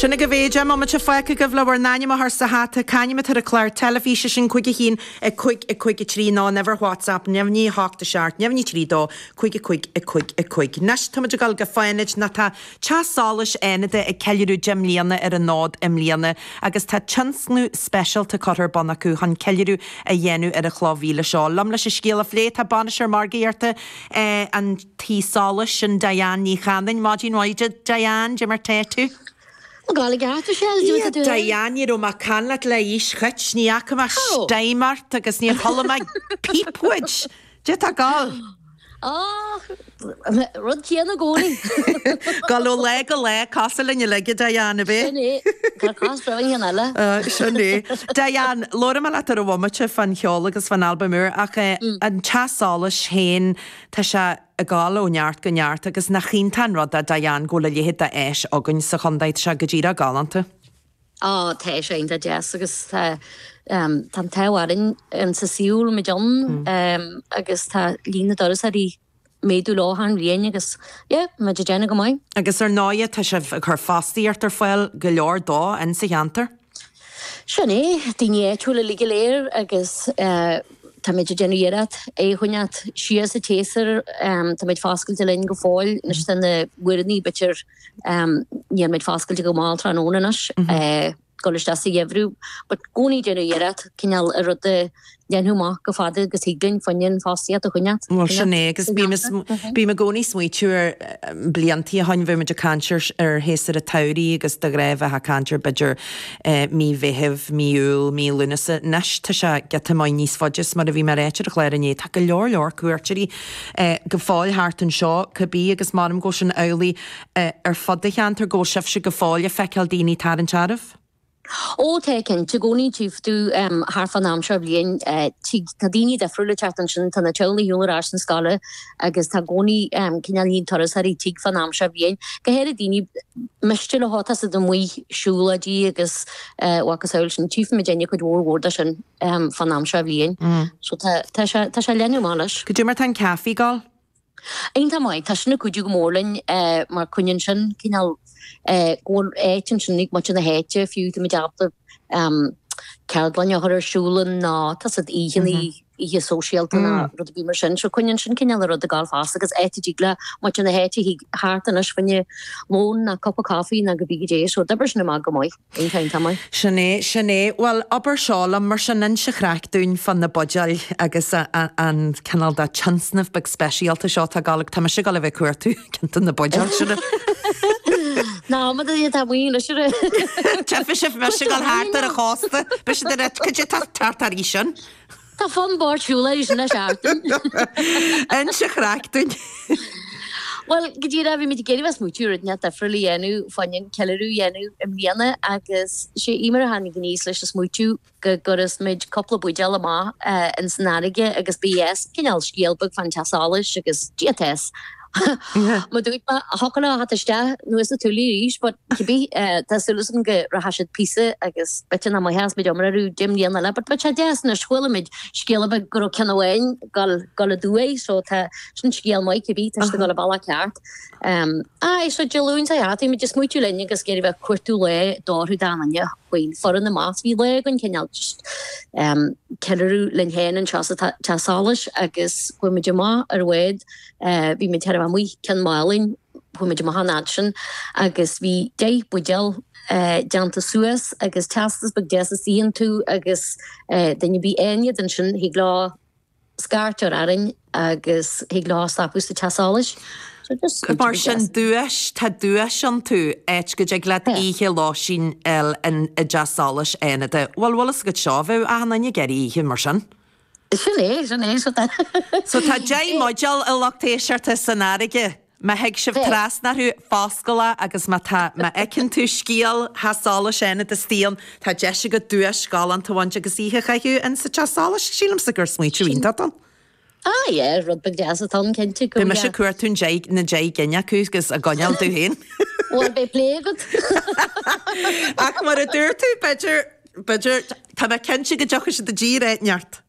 Sin agaibh é, deich mbomaite fágtha agaibh le bhur n-ainm a chur sa hata, c'ainm atá ar an chlár teilifíse sin, cúig a haon, a cúig, a cúig a trí, nó uimhir WhatsApp, neamhní a hocht, a seacht, neamhní trí, dó, cúig, a cúig, a cúig, a cúig. Anois, táimid ag dul go Fánaid, nó tá Teach Solais Fhánaide ag ceiliúradh deich mbliana ar an fhód i mbliana agus tá tionscnamh speisialta curtha ar bun acu chun ceiliúradh a dhéanamh ar an chloch mhíle seo. Liom leis an scéal a phlé, tá Bainisteoir Margaíochta an. Tí Solais sin Diane Ní Chanainn. Maidin mhaith Diane, cad é mar tá tú? Tá mé i gceart, Michelle, cad é mar tá tú? Dia Diane, ní raibh mé ag caint leat le haois, ní fhaca mé stím ort agus níor chuala mé píp uait, cad é tá ag gabháil? Och, rud céanna i gcónaí. Ag gabháil ó lá go lá, cosúil linn uilig a Diane, a bhí? Sin é, tá cách breá inniu. Sin é. Diane, labhróidh mé leat ar an bhomaite fán cheol agus fán albam úr ach an teach solais féin, Tá sé ag dul ó neart go neart agus nach iontach an rud é Diane go bhfuil a leithéid d'áis againn sa chondae. Tá sé go díreach galánta. Á, tá sé iontach deas agus tá an t-ádh orainn insa suíomh a bhfuil muid ann agus tá líon na dturasóirí ag méadú achan bhliain agus, yeah, muid ag déanamh go maith. Agus ar ndóighe, tá sibh ag cur fostaíocht ar fáil, go leor dó, insa cheantar. Sin é, daoine áitiúla uilig go léir agus táimid ag déanamh iarracht é a choinneáilt siar sa tséasúr. Táimid foscailte linn go fóill. Anois tá na huaireanta, b'fhéidir, níl muid foscailte go mall tráthnóna anois, ag dul isteach sa gheimhreadh. But gcónaí déanamh iarracht cineál an rud a Dhéanamh chomh fada agus thig linn fá choinne fostaíocht a choinneáilt. Bhuel, sin é agus bím i gcónaí ag smaoitiú ar bliantaí ó shoin, bhí muid ag caint ar shéasúr a' tsamhraidh agus de ghnáth bheith a' caint ar b'fhéidir mí Mheithimh, mí Iúil, mí Lúnasa, anois tá sé giota maith níos faide is mar a bhí mé ráite ar chlár inné, tá go leor leor cuairteoirí go fóill thart anseo cibé agus maram go bhfuil sin amhlaidh ar fud an cheantair, go bhfuil sibhse go fóill a' feiceáil daoine ag tarraingt oraibh? Ó, tá, cinnte, i gcónaí tchífidh tú thart fán am seo bhliain, tigh, tá daoine difriúil ag teacht ansin, tá na teaghlaigh ar shiúl ar ais chun scoile agus tá gcónaí, cineál, líon turasóirí a thig fán am seo bhliain. Go háirid daoine b'fhéidir atá ag teacht amuigh, siúlóidí agus a chosúil sin, tchífimidinne cuid mhór mhór de sin fán am seo bhliain. So tá, tá sé, tá sé an-mhaith. Agus cad é mar tá an caifé ag gabháil. Iontach maith. Tá sin ag cuidiú go mór linn mar coinníonn sin cineál go bhfuil áit ansin ag muintir na háite fiú tá muid ábalta ceardlanna a chur ar siúl ann nó tá a fhios agat oícheanna, oíche sóisialta nó rud ar bith mar sin. So coinníonn sin cineál an rud ag dul fosta agus áit a dtig le muintir na háite teacht isteach anois fá choinne lón nó cupa coffee nó cibé cad é. So d'oibrigh sin amach go maith. Bíonn ceann tamaill. Sin é, sin é. Bhuel, abair seo liom, mar sin, inis an chraic dúinn fá na buidéil agus an cineál de tionscnamh beag speisialta seo atá ag gabháil agat. Tá mise ag gabháil a bheith ag cuartú ceann de na buidéil seo. Ná, mura dtéann tú amuigh, sure. Tífidh sibh mise ag gabháil thart ar an chósta. Beidh siad ag rá, caidé atá tart thar aois ann. Tá fonn báid siúlá aois anois artain. Inis an chraic dúinn. Bhuel, go díreach bhí muid ag iarraidh bheith ag smaoitiú rud inteacht difriúil a dhéanamh, fá choinne ceiliúradh a dhéanamh i mbliana agus sé Eimear a tháinig aníos leis an smaoitiú go gcuirfeas muid cúpla buidéal amach ins an fharraige agus beas cineál scéal beag fán teach solais agus Dia tess. Mar a dúirt mé, Thug an áth isteach, nó is tú liath arís, but cibé, tá súil agam go rachaidh siad píosa agus b'fhéidir nach mbeas muid iomrá orthu go deich mbliana eile, but muid thar deas anois, char chuala muid scéal ar bith go raibh ceann amháin gal, gal aduaidh, so tá, sin scéal maith, cibé, tá siad ag dul an bealach ceart. Aye, so Dé Luain seo chuaigh thart, bhí muid ag smaoitiú linn agus ag iarraidh bheith ag cuartú lá a d'fhóirfeadh do dhaoine faoin foireann na mbás. Bhí lá againn cineál just ceiliúradh linn féin anseo sa Teach Solais agus chuaigh muid amach ar an bhád, Eh, bhí muid taobh amuigh de Cheann Mhálainn, chuaigh muid amach an fhad sin agus bhí deich buidéal eh, déanta suas agus teastas beag deas istigh iontu agus eh, duine ar bith a fhaigheann iad ansin thig leo scairt a chur orainn agus thig leo stopadh sa teach solais. So just go Mar sin duais tá duais iontu, áit go dtig leat Yeah. oíche lóistín a fháil i dteach solais Fhánada. Bhuel, bhfuil a fhios agat seo, bheadh achan duine ag iarraidh oíche mar sin. Sin é, sin é, sin é. So tá deich mbuidéal, a lucht éisteachta, san fharraige. Má thig sibh Bheadh. trasna orthu, foscail é agus má tá, má fheiceann tú scéal teach solais Fhánada istigh ann, tá deis agat duais galánta a bhaint agus oíche a chaitheamh in sa teach solais. Sílimse gur smaoitiú Sin. iontach atá ann. Ah yeah, rud beag deas atá ann, cinnte, go Beidh mise ag yeah. cuartú an deich, na deich gcinn acu agus á gcoinneáil domh féin. Bhuel, beidh plé agat. Ach mar a dúirt tú, b'fhéidir, b'fhéidir, tá mé cinnte go dtiocfaidh siad i dtír áit inteacht.